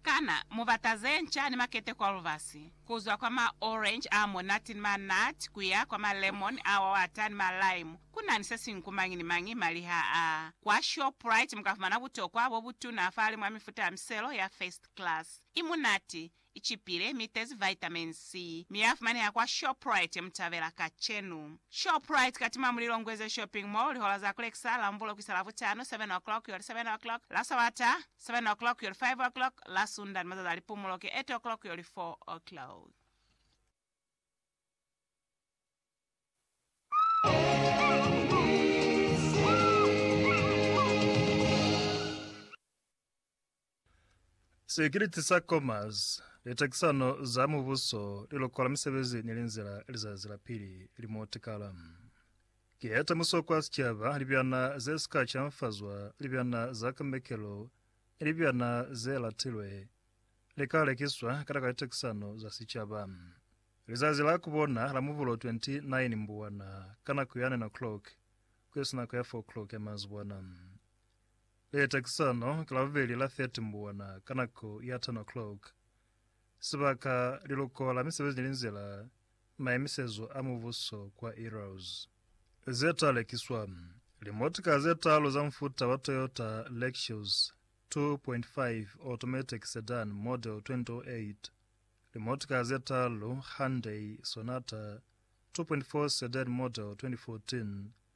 Kana mu bata ze nca ni maketeko a lubasi, ku zwa kwa ma orange a monate ni ma nut ku ya kwa ma lemon a wawata ni ma lime? Ku na ni se siñwi ku mañi ni mañi maliha a. Kwa Shoprite mu ka fumana butokwa bo butuna fa limwi a mifuta ya miselo ya first class. I munate, Icipile, mi itezi vitamin C, mi ya fumaneha kwa Shoprite mutabela kacenu. Shoprite katima muli Longweze Shopping Mall, lihola za kulekisa, Lambulo kuisa Lavutano, 7 o'clock yoli 7 o'clock, la Sabata, 7 o'clock yoli 5 o'clock, la Sunda ni mazazi a lipumulo ki 8 o'clock yoli 4 o'clock. Sikiliti sa Commerce, Litakisano za Mubuso, Lilokola Misebezi ni Linzila Lizazi la Pili li mo Tikala. Ki heta muso kwa sicaba, libyana ze si ka canfazwa, libyana za kamekelo ni libyana ze latilwe li ka lekiswa kata ka litakisano za sicaba. Lizazi la ku bona la Mubulo 29 Mbuwana ka nako ya 9 o'clock ku isi nako ya 4 o'clock ya manzibwana. Leta ki sono ka Labubeli la 30 Mbuwana ka nako ya 10 o'clock. Sibaka, Liloko la Misebezi ni Linzila, Maemisezo a Mubuso kwa Eros. Ze ta lekiswa, Limotika ze talu za mufuta wa Toyota Lexus 2.5 Automatic Sedan Model 2008, limotika ze talu Hyundai Sonata 2.4 Sedan Model 2014,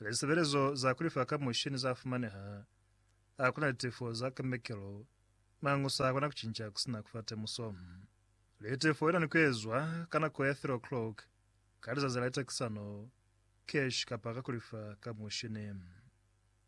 Lisebelezo za kulifa ka mushini za fumaneha. Ha kuna litefo za kemekelo, mangusa akona kucinca kusina kufa temuso. Litefo ilani kuezwa ka nako ya 3 o'clock ka lizazi la litekisano, cash kapa ka kulifa ka mushini.